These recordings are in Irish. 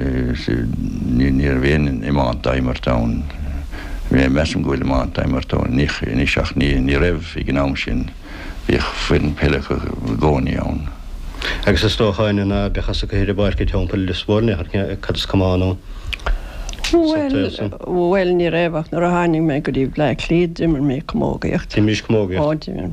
Is níorbh aon iomáint á imirt ann. Measaim go bhfuil iomáint á imirt ann anois ach ní raibh ag an am sin. Bhíodh foireann peile acu i gcónaí ann. Agus is dócha an ná beadh as a gcathaoir i bpáirc i dteampall Lios Mhóir nach ndearna cad is cuma ann sa taobh san? Bhuel, ní raibh ach nuair a tháinig mé go dtí Bhleá Cliath d'imir mé camógaíocht. D'imrís camógaíocht? Ó, d'imir.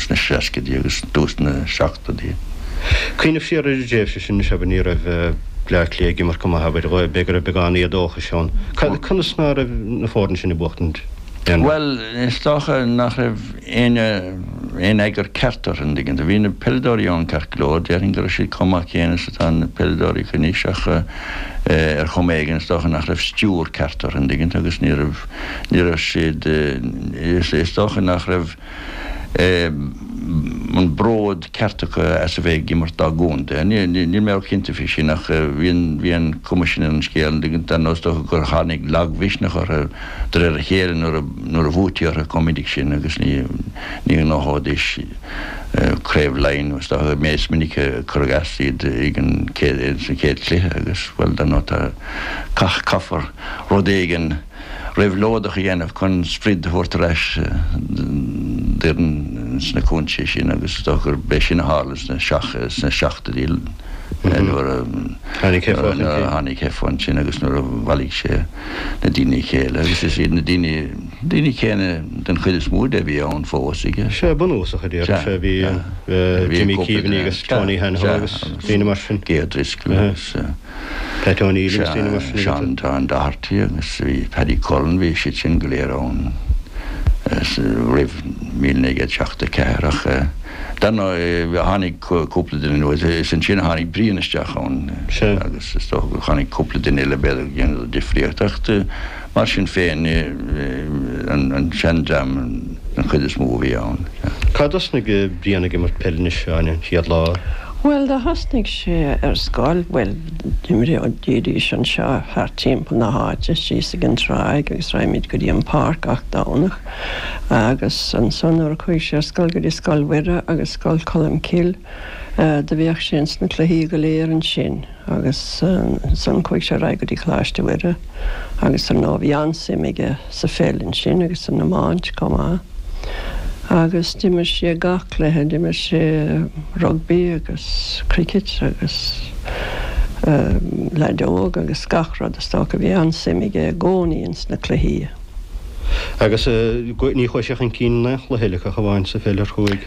sna seascaidí agus i dtús na seachtóidí. Cuimhnigh siar ar an dtréimhse sin, is ea, bhuel ní raibh Bleá Cliath ag imirt go maith, abair, b'fhéidir go raibh beagán éadóchais ann. Conas ná raibh na foirne sin ag buachtaint aon rud? Bhuel, is dócha nach raibh éinne, aon eagar ceart orthu, an dtuigeann tú, bhí na peileadóirí ann ceart go leor, déarfainn go raibh siad chomh maith céanna is atá na peileadóirí acu anois ach ar chuma éigin is dócha nach raibh stiúir ceart orthu, an dtuigeann tú, agus ní raibh. ní raibh siad, is dócha nach raibh an bród ceart acu as a bheith ag imirt dá gcontae. Níl mé cinnte faoi sin ach bhí an cuma sin ar an scéal. Ar ndóigh is dócha gur tháinig lagmhisneach orthu de réir a chéile nuair a bhuaití orthu chomh minic sin agus ní ghnóthóidís craobh Laighin, is dócha. Is minic a cuireadh as iad ag an chéad sa chéad chluiche agus, bhuel, dar ndóigh tá, caith caithfear. rud éigin réabhlóideach a dhéanamh chun sprid a thabhairt ar ais d'fhoireann sna cúinsí sin agus is dócha gur b'é sin a tharla sna seachtóidí nuair a tháinig Heffo ansin agus nuair a bhailigh sé na daoine le chéile agus is iad na daoine céanna den chuid is mó díobh a bhí ann fós, aige? Is é bunúsach a déarfadh sé, bhí Jimmy Keaveney agus Tony Hanahan agus daoine mar sin. Gay O'Driscoll agus. Tá Tony Evans trína mhac san agat. Seán, tá, Seán Doherty agus bhí Paddy Cullen, bhí siad sin go léir ann roimh míle naoi gcéad seachtó ceathair ach dar ndóigh tháinig cúpla duine nua, is ansin a tháinig Brian isteach ann agus is dócha gur tháinig cúpla duine eile b'fhéidir a dhéanfadh difríocht ach Mar sin féin, an seandream den chuid is mó a bhí ann. Cá dtosnaigh Brian ag imirt peile anois, Áine, an chéad lá? Bhuel, do thosnaigh sé ar scoil, bhuel, d'imrídís anseo thart timpeall na háite, síos ag an tráigh agus raghaimis go dtí an pháirc gach Domhnach agus ansan nuair a chuaigh sé ar scoil go dtí Scoil Mhuire agus Scoil Cholmcille, Do bhíodh sé ins na cluichí go léir ansin agus ansan chuaidh sé ar aghaidh go dtí Coláiste Mhuire agus ar ndóigh bhí an-suim aige sa pheil ansin agus san iomáint comh maith agus d'imir sé gach cluiche, d'imir sé rugbaí agus cricket agus leideog agus gach rud is dócha. Bhí an-suim aige i gcónaí ins na cluichí. Agus ní chuaidh sé chun cinn in aon chluiche uilig ach amháin sa pheil ar chuaidh?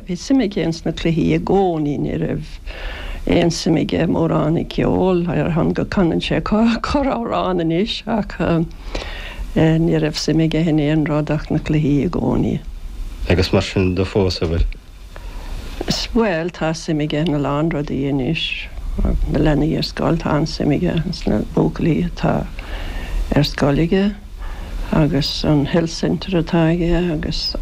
Bhí suim aige ins na cluichí i gcónaí. Ní raibh aon suim aige mórán i gceol, ar shon go canann sé corr-amhrán anois, ach ní raibh suim aige in aon rud ach na cluichí i gcónaí. Agus mar sin de fós, a' bhfuil? Bhuel, tá suim aige in a lán rudaí anois. Na leanaí ar scoil, tá an-suim aige ins na buachaillí atá ar scoil aige, agus an health centre atá aige agus.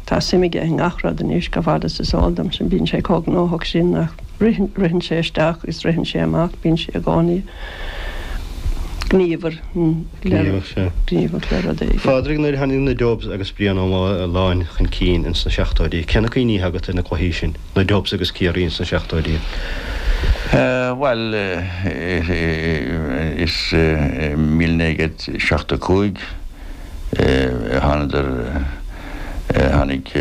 Tá suim aige i ngach rud anois, chomh fada agus is eol domsa, bíonn sé chomh gnóthach sin nach ritheann, ritheann sé isteach agus ritheann sé amach, bíonn sé i gcónaí gníomhar, gníomhach, sea, gníomhach le rud éigin. Phádraig, Nuair a tháinig na Dubs agus Brian Ó Maoláin chun cinn ins na seachtóidí, cé na cuimhní atá agat ar na cluichí sin, na Dubs agus Ciarraí ins na seachtóidí? Bhuel, is, míle naoi gcéad seachtó cúig, thánadar, tháinig,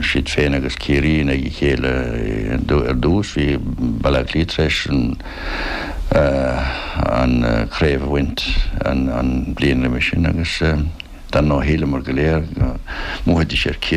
siad féin agus Ciarraí in aghaidh a chéile ar dtús, bhí Baile Átha Cliath tar éis an chraobh a bhaint an bhliain roimhe sin agus dar ndóigh shíleamar go léir go mbuafaidís ar Chiarraí.